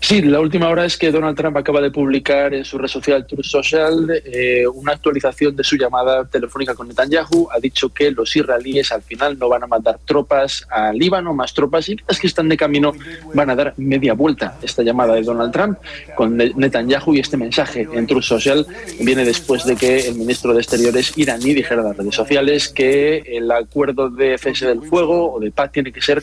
Sí, la última hora es que Donald Trump a caba de publica den su red social Truth Social un actualisacion den su yamada telefonica cu Netanyahu, a dicho que los israelíes al final no ban a mandar tropas a Libano, mas tropas y kitas kinstan den camino ban a dar media bulta. Esta yamada di Donald Trump con Netanyahu y este mensahe en Truth Social viene despues de que el ministro de Exteriores iraní dijera na redes sociales que el acuerdo de cese del fuego o de paz tiene que ser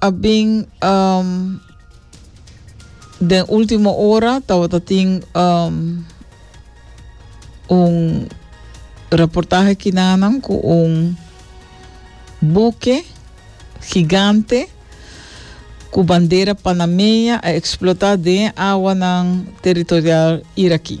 a bin um, den último hora tabata tin um, un reportaje kinanan ku un buke gigante ku bandera panameña a eksplotá den awanan territorial irakí.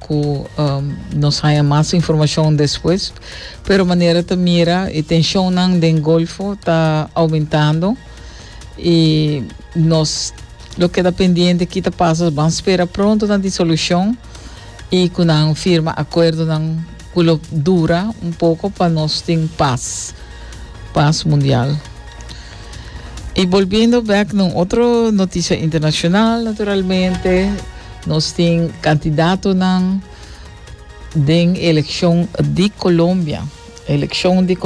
ku nos haña mas informashon despues, pero manera ta mira e tenshonnan den Golfo ta oumentando i nos lo keda pendiente ki ta pasa, ban spera pronto na disolushon i ku nan firma akuerdonan ku lo dura un poko pa nos tin pas, pas mundial. Y volviendo back na otro noticia internacional, naturalmente, nos tin candidato den elección di Colombia. Elección di Colombia.